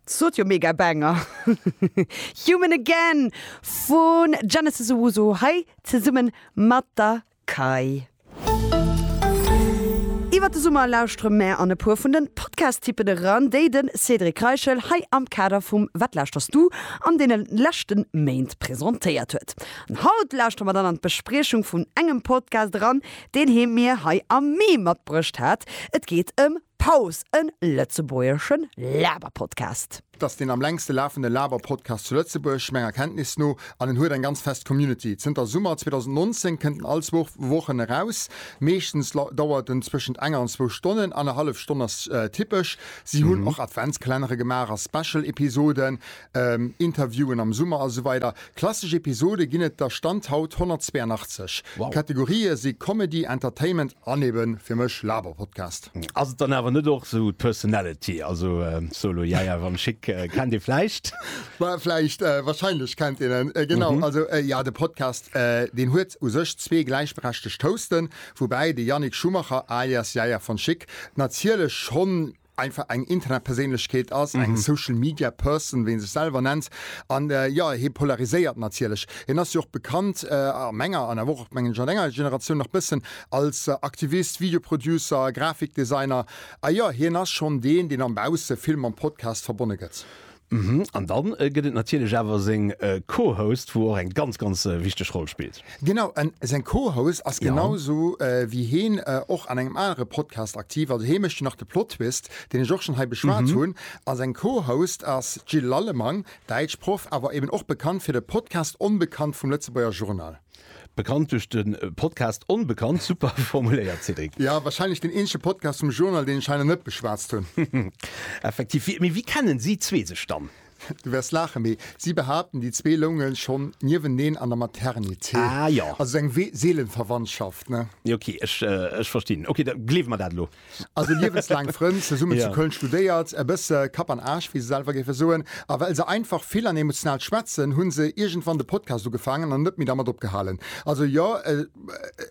Sot jo mega Banger! Human Again vun Genesis Owusu hei zesummen mat der Kei. Iwwert de Summer lauschtere mär an e puer vun den Podcast-Typen eran, déi den Cédric Reichel hei am Kader vum Wat lauschterst du? an deenen leschten Méint presentéiert huet. An haut lauschtere mer dann an d'Bespriechung vun engem Podcast eran, deen hie mir hei am Mee matbruecht hat. Et geet ëm Paus, en lëtzebuergeschen Laberpodcast. Et ass deen am längste lafende Laberpodcast zu Lëtzebuerg, menger Kenntnis no, an en huet eng ganz fest Community. Zënter Summer 2019 kënnt en all zwou Wochen eraus. Meeschtens dauert en zwëschent enger an zwou Stonnen, annerhallef Stonn ass typesch. Si hunn och Adventskalenner gemaach a Special-Episoden. Interviewen am Summer a sou weider Klassesch Episode ginn et der Stand haut 182. D'Kategorië si Comedy, Entertainment an ebe fir mech Laberpodcast. Ass et dann awer net och sou d'Personality? Also Solo, Jaja, Wann Schick kennt ee vläicht? Bah vläicht, wahrscheinlech kennt een en, genau. Also jo, de Podcast deen huet u sech zwee gläichberechtegt Hosten, woubäi de Yannick Schumacher alias Jaja von Schick natierlech schonn einfach eng Internetperséinlechkeet ass, eng Social Media Person, wéi en sech selwer nennt. An jo, hie polariséiert natierlech. Hien ass jo och bekannt, a menger an awer och, mengen ech, a denger Generatioun nach bëssen, als Aktivist, Video Producer, Grafikdesigner. A jo, hien ass schonn deen, deen am bausse vill mam Podcast verbonne gëtt. Mhm, an dann gëtt et natierlech awer seng Co-Host, wou och eng ganz, ganz wichteg Roll spillt. Genau, an seng Co-Host ass genau esou wéi hien och an engem anere Podcast aktiv, also hie mécht jo nach de Plottwist, deen ech och schonn hei beschwat hunn. A seng Co-Host ass d'Jill Lallemang, Däitschproff, awer eben och bekannt fir de Podcast Onbekannt vum Lëtzebuerger Journal. Bekannt duerch de Podcast Onbekannt, super formuléiert Cédric. Jo, wahrscheinlech deen eenzege Podcast vum Journal, deen ech hei nach net beschwatzt hunn. Effektiv. Wie, mee wéi kennen si zwee sech dann? Du wäers laachen, mee si behaapten, déi zwee loungen schonn nieweneen an der Maternité. Ah, jo. Also sou eng Seelenverwandtschaft, ne? Ok, ech, ech verstinn. Ok, da gleewe mer dat elo. Also liewenslaang Frënn, zesummen zu Köln studéiert, e bësse Kapp an Aarsch, wéi se selwer géife soen. A well se einfach vill an emotional schwätzen, hu se iergendwann de Podcast ugefaangen an net méi dermat opgehalen. Also jo,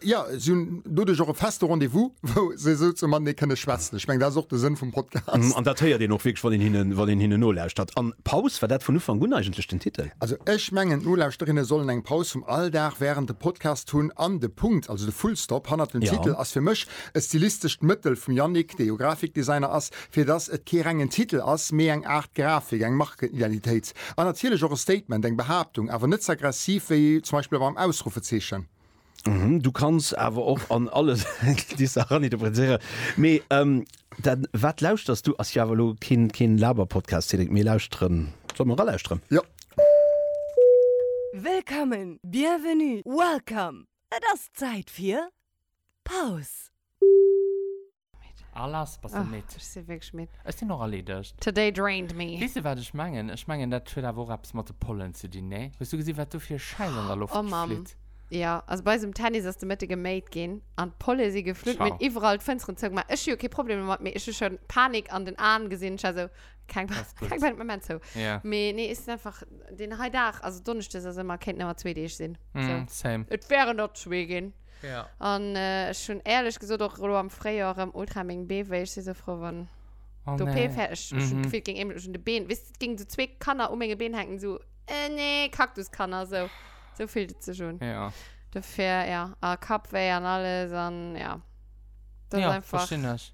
jo, si hunn doduerch och e feste Rendez-vous, wou se esou ze matenee kënne schwätzen. Ech mengen, dat ass och de Sënn vum Podcast. An dat héiert een och wierklech, wann een hinnen nolauschtert. An Paus, war dat vun Ufank un eigentlech den Titel? Also ech mengen, d'Nolauschterinne sollen eng Paus vum Alldag wärend dem Podcast hunn an de Punkt, also de Fullstop hannert dem Titel ass fir mech E stilistescht Mëttel vum Yannick, dee jo Grafikdesigner ass, fir dass et kee rengen Titel ass, mee eng Aart Grafik, eng Markenidentitéit an natierlech och e Statement, eng Behaaptung, awer net ze aggressiv wéi zum Beispill beim Ausruffezeechen. Uhmm, du kanns awer och an alles déi Saach raninterpretéieren. Mee dann, wat lauschters du? Ass jo awer elo keen Laberpodcast, Cedric. Mir lauschteren. Solle mer eralauschteren? Jo. Wëllkommen, bienvenue, welcome, et ass Zäit fir. Pause. Ah lass, bass de midd? Ech sinn wierklech midd. Ech sinn och erleedegt. Today drained me. Weess de wat ech mengen? Ech mengen dat huet awer och eppes mat de Pollen ze dinn, nee? Hues du gesi wat do fir e Schäiss an der Loft flitt? Oh Mamm, jo. Also bei eis um Tennis ass de Mëtte geméit ginn an d'Polle si geflunn. Mir hunn iwwerall d'Fënsteren zou gemaach. Ech hu jo kee Problem domat, mee ech hu schonn Panik an den Aen gesinn. Ech war esou, keng Panik, den Moment zou. Mee nee, ech sinn einfach deen hei Dag, also Donneschdes ass ëmmer, kéinten ëmmer zwee Deeg sinn. Same. Et wären der zwee ginn. Ja. An äh, ech hunn ehrlech gesot och lo am Fréijoer rem ultra meng Bee wéi. Ech si sou frou wann Oh d'OP nee. fäer ech ech hunn Mhm. d'Gefill et géing eemol ech hunn de Been weess et géing sou zwee Kanner u menge Been hänken sou äh, nee Kaktuskanner sou sou fillt et sech un. Ja. Dofir ja a Kappwéi an alles an ja. Dat ass Ja, einfach. verstinn ech.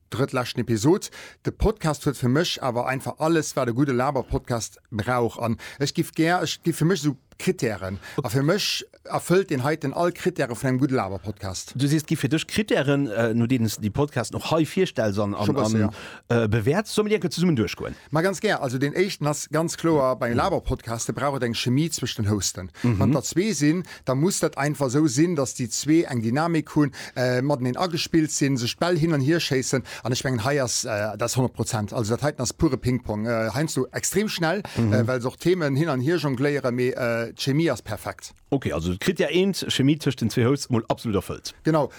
Drëttleschten Episod. De Podcast huet fir mech awer einfach alles wat e gudde Laberpodcast brauch an ech giff gär, et gi fir mech esou Kritären a fir mech erfëllt deen heiten all Kritäre vun engem gudde Laberpodcast. Du sees et gi fir dech Kritären no deenen s de déi Podcasten och hei virstells an Scho bësse, jo. bewäerts. Solle mir déi enke zesummen duerchgoen? Ma ganz gär. Also deen éischten ass ganz kloer, bei Laberpodcaste brauch et eng Chemie zwëscht den Hosten. Wann der zwee sinn, da muss dat einfach esou sinn, datt déi zwee eng Dynamik hunn, mateneen agespillt sinn, sech d'Bäll hin an hier schéissen an ech mengen hei ass dat 100 Prozent, also dat heiten ass pure Ping-Pong, heiansdo extrem schnell, well se och Themen hin an hier jongléieren, mee d'Chemie ass perfekt. Ok, also d'Krittär eent, Chemie tëscht den zwee Hosts, mol absolut erfëllt. Genau.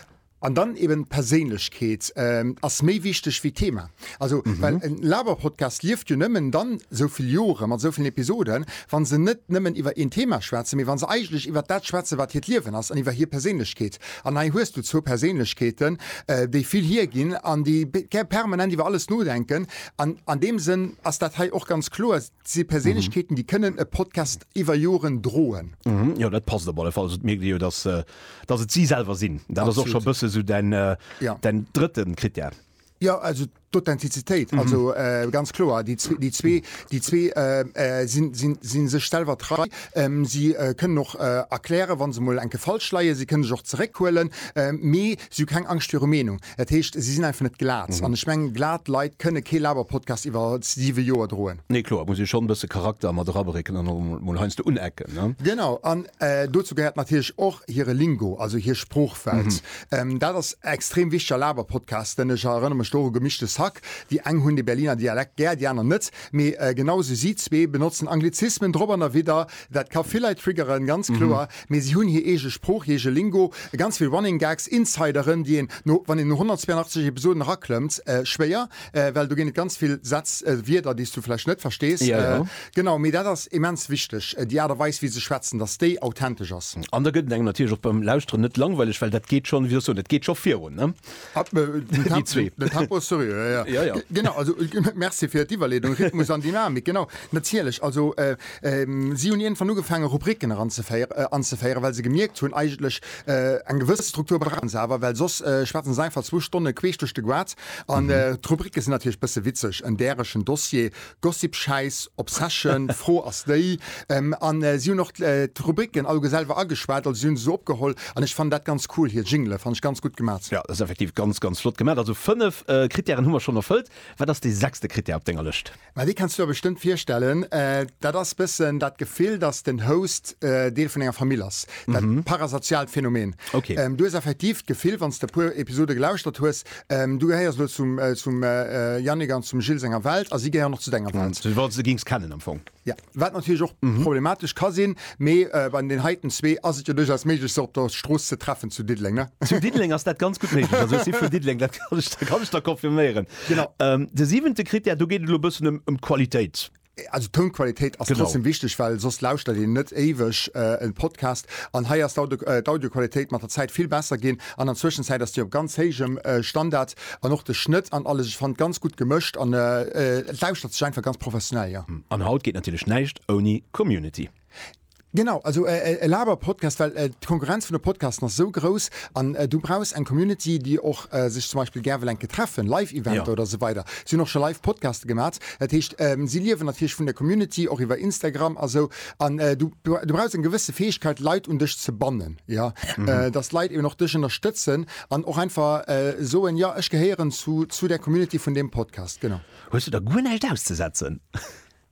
An dann eben d'Perséinlechkeet ass méi wichteg wéi d'Thema. Also well en Laber-Podcast lieft jo nëmmen dann esou vill Jore mat esou villen Episoden, wa se net nëmmen iwwer een Thema schwätzen, mee wa se eigentlech iwwer dat schwätzen, wat hiert Liewen ass an iwwer hir Perséinlechkeet. An hei hues du zwou Perséinlechkeeten, déi vill hierginn an déi permanent iwwer alles nodenken. An an deem Sënn ass dat hei och ganz kloer. Dat si Perséinlechkeeten, déi kënnen e Podcast iwwer Joren droen. Jo, dat passt op alle Fall. Also et mierkt ee jo, datt datt et si selwer sinn. Dat ass och scho e bësse sou däin däin drëtte Critère. Jo, also d'Authentizitéit. Also ganz kloer, déi zwee déi zwee déi zwee sinn sinn si sech selwer trei. Si kënnen och erklären, wa se mol enke falsch leien. Si kënne sech och zeréckhuelen. Mee Si hu keng Angscht viru Meenung. Dat heescht, si sinn einfach net glat. An ech mengen, glat Leit kënne kee Labour-Podcast iwwer siwe Joer droen. Nee, kloer, et muss ee schonn e bësse Charakter mat erabrëcken an och emol heiansdo unecken, ne? Genau. An dozou gehéiert natierlech och hire Lingo, also hir Sproochwelt. Dat ass extrem wichteg a Labour-Podcasten. Ech erënnere mech do u Gemischtes Hack. Déi eng hunn de Berliner Dialekt gär, déi aner net. Mee genau esou, si zwee benotzen Anglizismen drop an derwidder, Dat ka vill Leit triggeren, ganz kloer, mee si hunn hir eege Sprooch, hir eege Lingo, ganz vill Running Gags, Insideren, déi een no, wann een no 182 Episoden eraklëmmt, schwéier, well do ginn et ganz vill Sätz, Wierder, déi s du vläicht net verstees. Genau, mee dat ass immens wichteg, déi Aart a Weis, wéi se schwätzen, datt déi authentesch ass. An da gëtt et engem natierlech och beim Lauschteren net langweileg, well dat geet schonn, wéi soll ech soen, et geet scho virun. Merci fir d'Iwwerleedung, Rhythmus an Dynamik, genau, natierlech. Also si hunn iergendwann ugefaangen, Rubriken eranzeféieren, anzeféieren, well se gemierkt hunn, eigentlech eng gewëss Struktur brauche se awer, well soss schwätze se einfach zwou Stonne queesch duerch de Goaz. An d'Rubrike sinn natierlech e bësse witzeg, en däregen Dossier Gossip, Schäiss, Obsession, Fro ass déi, an si hunn och d'Rubricken alleguer selwer ageschwat, also si hunn se esou opgeholl, an ech fannen dat ganz cool, hir Jingele fannen ech ganz gutt gemat. Jo, dat ass effektiv ganz, ganz flott gemat. Also 5 Krittären hu mer schonn erfëllt. Wat ass dee sechste Krittär op denger Lëscht? Ma dee kenns du der bestëmmt virstellen. Dat ass bëssen dat Gefill, datt den Host Deel vun enger Famill ass, dat parasoziaalt Phänomen. Du hues effektiv d'Gefill, wann s de e puer Episode gelauschtert hues, Du gehéiers elo zum zum Yannick an zum Gilles senger Welt a si gehéieren och zu denger Welt. Du wollts se géings kennen am Fong. Ja, wat natierlech och problematesch ka sinn, mee bei den heiten zwee ass et jo duerchaus méiglech se op der Strooss ze treffen zu Diddeleng, ne? Zu Diddeleng ass dat ganz gutt méiglech, also ech si vun Diddeleng, dat kann ech der confirméieren. Genau. De siwente Krittär, do geet et elo e bëssen ëm d'Qualitéit. Also d'Tounqualitéit ass trotzdem wichteg, well soss lauschtert een net éiweg e Podcast. An hei ass d'Audioqualitéit mat der Zäit vill besser ginn. An an Zwëschenzäit ass déi op ganz héijem Standard. An och de Schnëtt an alles, ech fand ganz gutt gemëscht an et lauschtert sech einfach ganz professionell, jo. An haut geet natierlech näischt ouni Community. Genau, also äh, äh, e Laber-Podcast, well äh, d'Konkurrenz vun de Podcasten ass sou grouss an äh, du brauchs eng Community, déi och äh, sech zum Beispiel gär wëll enke treffen, Live-Eventer Ja. oder esou weider. Si hunn och scho live Podcaste gemat. Dat heescht, ähm, si liewen natierlech vun der Community, och iwwer Instagram a sou. An äh, du, du, du brauchs eng gewësse Fäegkeet, Leit un dech ze bannen, ja, äh, dass d'Leit eben och dech ënnerstëtzen an och einfach äh, soen, ja, ech gehéieren zu, zu der Community vun deem Podcast, genau. Hues du da guer näischt auszesetzen?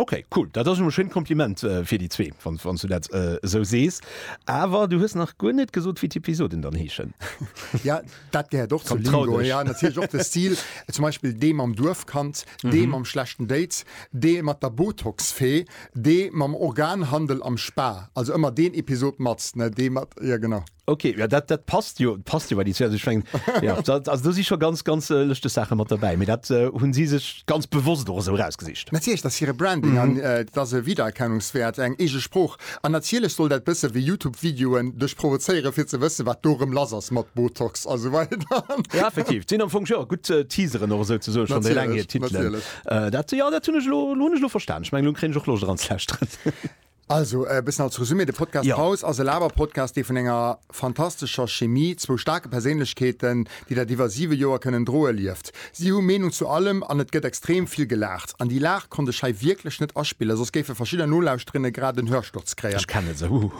Ok cool, dat ass jo e schéint Kompliment fir déi zwee, wann wann s du dat esou sees. Awer du hues nach guer net gesot, wéi d'Episoden dann heeschen. Ja dat gehéiert och zur Trau dech. Ja natierlech och de Stil, zum Beispill dee mam Duerfkand, dee mam schlechten Date, dee mat der Botox-Fee, dee mam Organhandel am Spa, also ëmmer deen Episod mat, ne dee mat, jo genau. Okay, ja, dat, dat passt jo passt jo bei die also schwingen ja, also du si schon ganz ganz äh, lechte Sache mat dabei mir dat äh, hunn si sech ganz bewusst oder so rausgesicht Natierlech dass hire Branding mhm. an äh, dass e Wiedererkennungswert eng ege Sproch an natierlech soll dat bësse wie YouTube-Videoen duch provozéiere fir ze wësse wat dorem lass ass mat Botox also weiter ja, effektiv sinn am Funk ja, gut äh, Teaseren oder so ze so schon lang Titel äh, dat ja dat hunnech lo, lo, lo verstand ich mein, lo kri och lo dran Also, e bëssen als Resumé, de Podcast Jo. Paus ass e Laber-Podcast, dee vun enger fantastescher Chemie, zwou staarke Perséinlechkeeten, déi dat iwwer siwe Joer kënnen droe, lieft. Si hu Meenung zu allem an et gëtt extrem vill gelaacht. An déi Laach konnt ech hei wierklech net aspillen, soss géife verschidder Nolauschterinnen grad en Hörsturz kréien. Ech kennen se, huhu.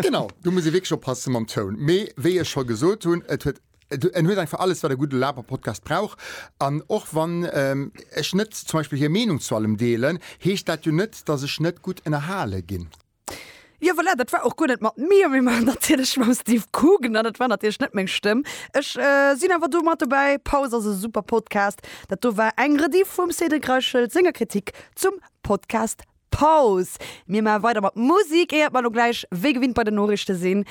Genau, do muss ee wierklech oppasse mam Toun. Mee wéi ech scho gesot hunn, et huet. En huet einfach alles, wat e gudde Laberpodcast brauch. An och wann ech net zum Beispill hir Meenung zu allem deelen, heescht dat jo net, datt ech net gutt ënnerhale ginn. Jo voilà, dat war och guer net mat mir, mee mer natierlech mam Steve Coogan. An et war natierlech net meng Stëmm. Ech sinn awer do mat dobäi. Pause ass e super Podcast. Dat do war eng Rediff vum Cédric Reichel senger Kritik zum Podcast Paus! Mir maache weider mat Musik, éiert mer lo gläich wéi gewinnt bei den Noriichte sinn.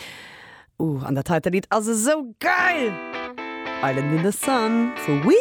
Ooh, an dat heite Lidd ass esou geil! Island in the Sun vu We